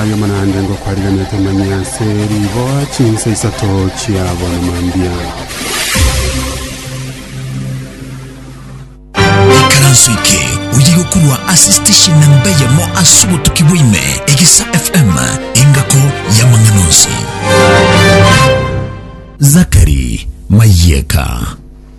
Ayemo naende ngokwariganete manye ase riboa chinsa isato chiabo na mambia. Ikaranso eke oye gokorwa ase station na mbeyemo ase obotuki bwaime egisa fm engako yamang'ana onsi. Zachary Mayeka.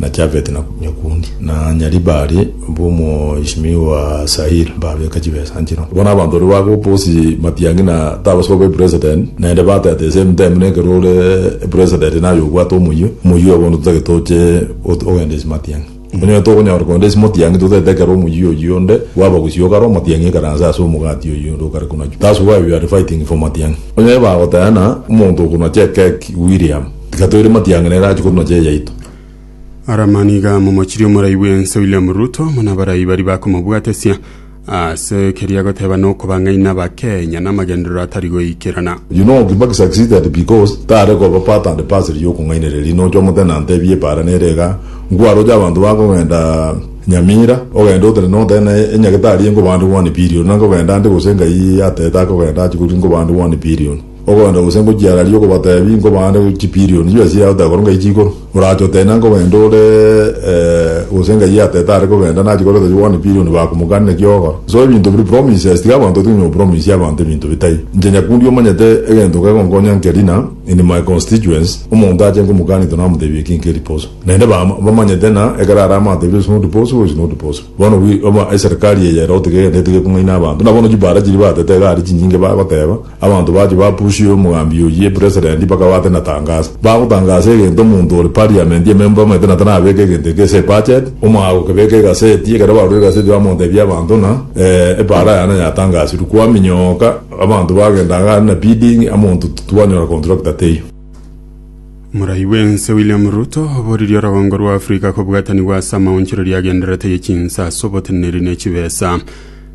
na Jafeti, na nyakundi, na Nyaribali, bw'omoishimi wa Sahili, mbabeeka chibesa nchino. Bono abanto baria bagoka bonsi matiangi na tabasu aba epresedenti, naende batete the same time nekero ore epresedenti naye obwate omoyio, omoyio oye bono totagete oche ot- ogenda ase matiangi. Onye tokonyara kogenda ase matiangi totagete ekero omoyio oyio onde bwaba gusio okare omatiangi ekaranse ase omogati oyio onde okare konachwa. That's why we are fighting for matiangi. Onye bagoteana omonto okonache ekeki William. Tiga toire matiang'ina ere ache korwa nochere yaito. Aramaniga momochirie omorai bw'ense William Ruto buna abarai baria bakomobwatesia ase keria agoteba nokobang'aina abakenya namagenderero atari goikerana. You know Kibaki succeeded because tare koba part and parcel y'okong'ainereria riria nocha omotene antebie epara nere igaa, nkwaroche abanto bakogenda Nyamira ogende otere notere na enyagetari enkobande one billion na nkogenda ande gose ngai atete akogenda ache korwa nkobande one billion. Ogoenda gose ngochiararie okobateebia, nkobaande chipirioni chibere chiria agotae korwa Ngai chikoro. Orache oteine ango gento ore gose Ngai ateete are kogenda, nachikore toche bono epirioni bakomokanire naki ogokora. So ebinto biri promises, tiga abanto batige konywa gopromisie abanto ebinto bitai. Inche Nyakundi omanyete egento kegonkonya nkeri na in my constituents, omonto ache nkomokani to namoteebia eki nkeri boso. Naende bam bamanyete na ekero are amateebie it's not possible, it's not possible. Bono wi oba eserikari eye ere otige egento etige ekong'aina abanto. Buna bono chibara chiria batete iga aria chinyinge bagoteeba, Abanto bachia bapusia omogambi oyio epresedenti bakaba ate na tangasa. Bagotangasa egento omonto ore parliament ememba omanyete na tanabeke egento eke ase ebudget, omogaka okebeka egaseti, ekero barure egaseti bamotebia abanto ng'a ee epaara yane yatangasirwe. Kwaminyoka abanto bagenda iga aria na bidding amonto twanyora contractor teiyo. Morai bw'ense William Ruto oboririe orogongo rwa Africa kobwatanigwa ase amaonchoreria agendererete ye chinsa ase oboteneneri ne chibesa.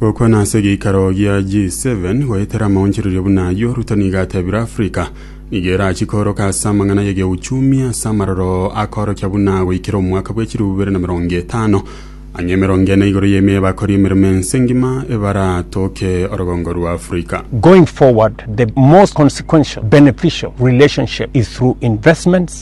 Gokwana ase egeikaro gia G7 goetera amaonchorerio buna ayio, Ruto nigo atebire Africa nigo erachie kooroka ase amang'ana y'egeuchumi ase amaroro akoorokia buna goikera omwaka bwa echirubu bibere na emerongo etano, ang'e emerongo ene igoro y'ime y'abakori emeremo ense ngima ebaratoke orogongo rwa Africa. Going forward, the most consequential, beneficial relationship is through investments,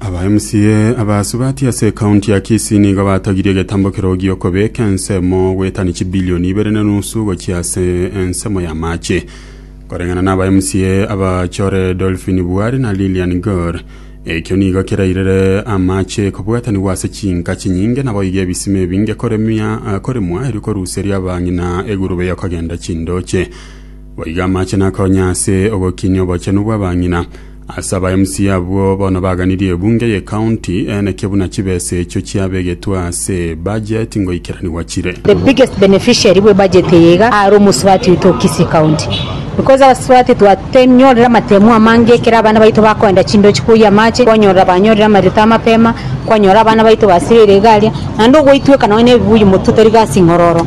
Aba MCA abasubati ase ekaunti ya Kisii nigo batogirie egetambo kerogi gi'okobeka ensemo goetania chibilioni ibere na enusu gochia ase ensemo y'amache. Koreng'ana na aba MCA abachore Dolphine Buari na Lilian Gor, ekio nigo kerairire amache kobwatanigwa ase chinka chinyinge naboigo ebisima ebinge koremia koremwa erio koruseria abang'ina egurube y'okogenda chindoche. Boigo amache nakonya ase ogokinia obochenu bw'abang'ina. Ase aba MC abwo bono baganirie ebunge y'ecounty eneke buna chibesa echio chiabegetwe ase ebudget ngoikeranigwa chire. The biggest beneficiary bwe budget eye iga are omosubati oito o Kisii County because abasubati twatenyorire amatemu amange ekero abana baito bakoenda chindochi koyia amache kwanyorora banyorire amarioto amapema kwanyora abana baito basibeire iga aria naende ogoitweka nonye nebibuyu motwe tari gasi ng'ororo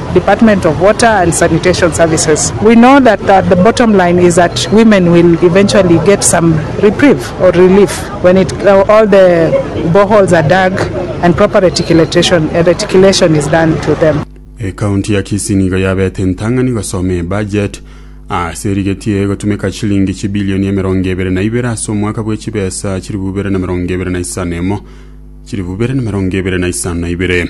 Department of Water and Sanitation Services. We know that the bottom line is that women will eventually get some reprieve or relief when it, all the boreholes are dug and proper reticulation, reticulation is done to them. Ekaunti ya Kisii nigo yabete entang'ani gosoma ebajet ase erigetie gotumeka chilingi chibilioni emerongo ebere na ibere ase omwaka bwe chibesa chilifu bibere na merongo ebere na isano emo chilifu bibere na merongo ebere na isano na ibere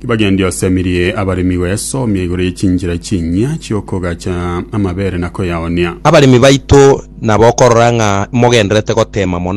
Tibagendi osemirie abaremi goyasomia igoro ye chinchera chinyia chi'okogacha amabeere na koyaonia. Abaremi baito nabokorora ng'a mogendererete gotema mono